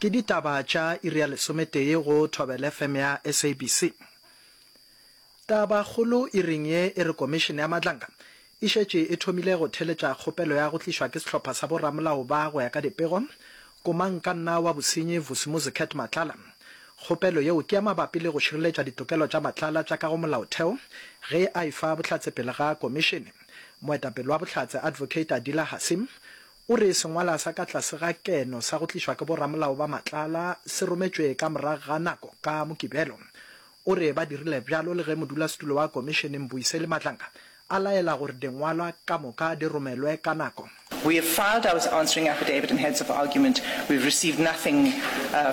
Ke ditaba tša iri ya lesometee go Thobela FM ya SABC. Tabakgolo iring ye e re Komišene ya Matlanga e šetše e thomile go theletša kgopelo ya go tlišwa ke sehlopha sa boramolao ba go ya ka dipego Komankanna wa Bosenyi Vusimuzi Cat Matlala. Kgopelo yeo ke ya mabapi le go šireletša ditokelo tša Matlala tša ka go Molaotheo ge a e fa bohlatse pele ga Komišene. Moetapele wa Bohlatse Advocate Adila Hassim O re sengwala sa ka tlase ga keno sa go tlišwa ke boramolao ba Matlala se rometšwe ka morago ga nako ka Mokibelo. O re ba dirile bjalo le ge modulasetulo wa komišene Mbuyiseli Madlanga a laela gore dingwalwa ka moka di romelwe ka nako. We have filed our answering affidavit and heads of argument. We have received nothing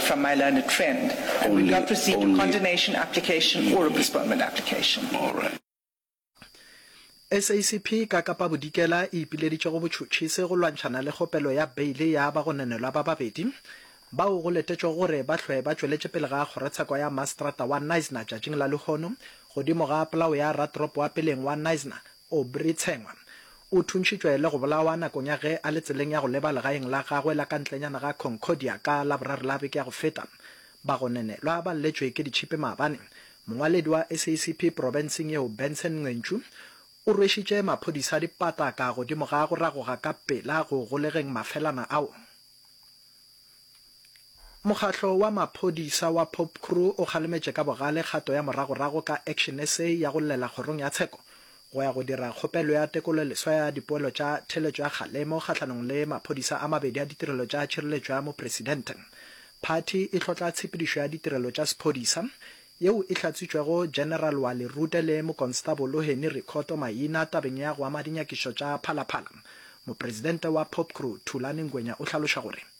from my learned friend and we have not received a condonation application or a postponement application. SACP ka Kapa Bodikela e ipileditše go botšhotšhisi go lwantšhana le kgopelo ya beile ya bagononelwa ba babedi bao go letetšwego gore ba hlwe ba tšweletše pele ga kgorotsheko ya maseterata wa Knysna tšatšing la lehono godimo ga polao ya ratoropo wa peleng wa Knysna, Aubrey Tshengwa. O thuntšhitšwe le go bolawa nakong ya ge a le tseleng ya go leba legaeng la gagwe la ka ntlenyana ga Concordia ka Laboraro la beke ya go feta. Bagononelwa ba lletšwe ke ditšhipi maabane Mongwaledi wa SACP profenseng yeo Benson Nqentsu o rwešitše maphodisa dipataka godimo ga go ragoga ka pela go golegeng mafelana ao. Mokgatlo wa maphodisa wa Popcru o kgalemetše ka bogale kgato ya moragorago ka Action SA ya go llela kgorong ya tsheko go ya go dira kgopelo ya tekololeswa ya dipoelo tša theeletšo ya kgalemo kgahlanong le maphodisa a mabedi a ditirelo tša tšhireletšo ya Mopresidente. Phathi e hlotla tshepedišo ya ditirelo tša sephodisa, yeo e hlatswitšwego General Wally Rute le Mokonstabolo Henny Rikhotso maina tabeng ya go ama dinyakišo tša phalaphala. Mopresidente wa Popcru, Thulani Ngwenya o hlaloša gore.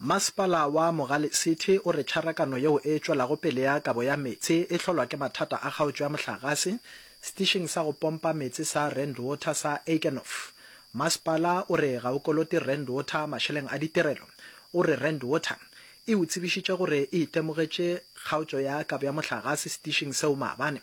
Mmasepala wa Mogale City o re tšharakano yeo e tšwelago pele ya kabo ya meetse e hlolwa ke mathata a kgaotšo ya mohlagase setišing sa go pompa meetse sa Rand Water sa Eikenhof. Masepala o re ga o kolote Rand Water mašeleng a ditirelo. O re Rand Water e o tsebišitše gore e itemogetše kgaotšo ya kabo ya mohlagase setišing seo maabane,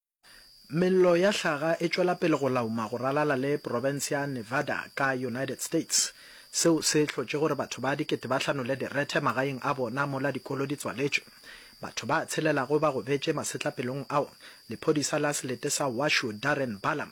Mello ya hlaga e tšwela pele go lauma go ralala le profense ya Nevada ka United States. Seo se hlotše gore batho ba dikete ba hlanole direthe magaeng a bona mola dikolo di tswaletšwe. Batho ba tshelelago ba gobetše masetlapelong ao. Lephodisa la selete sa Washoe Darren Balaam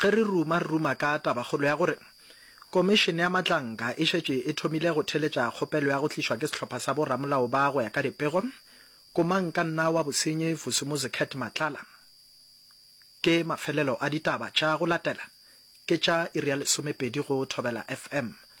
Ge re ruma, re ruma ka tabakgolo ya gore Komišene ya Matlanka e šetše e thomile go theletša kgopelo ya go tlišwa ke sehlopha sa bo-ramolao ba go ya ka dipego, Komangkanna wa bosenyi Vusimuzi Cat Matlala. Ke mafelelo a ditaba tša go latela, ke tša iri ya lesomepedi go Thobela FM,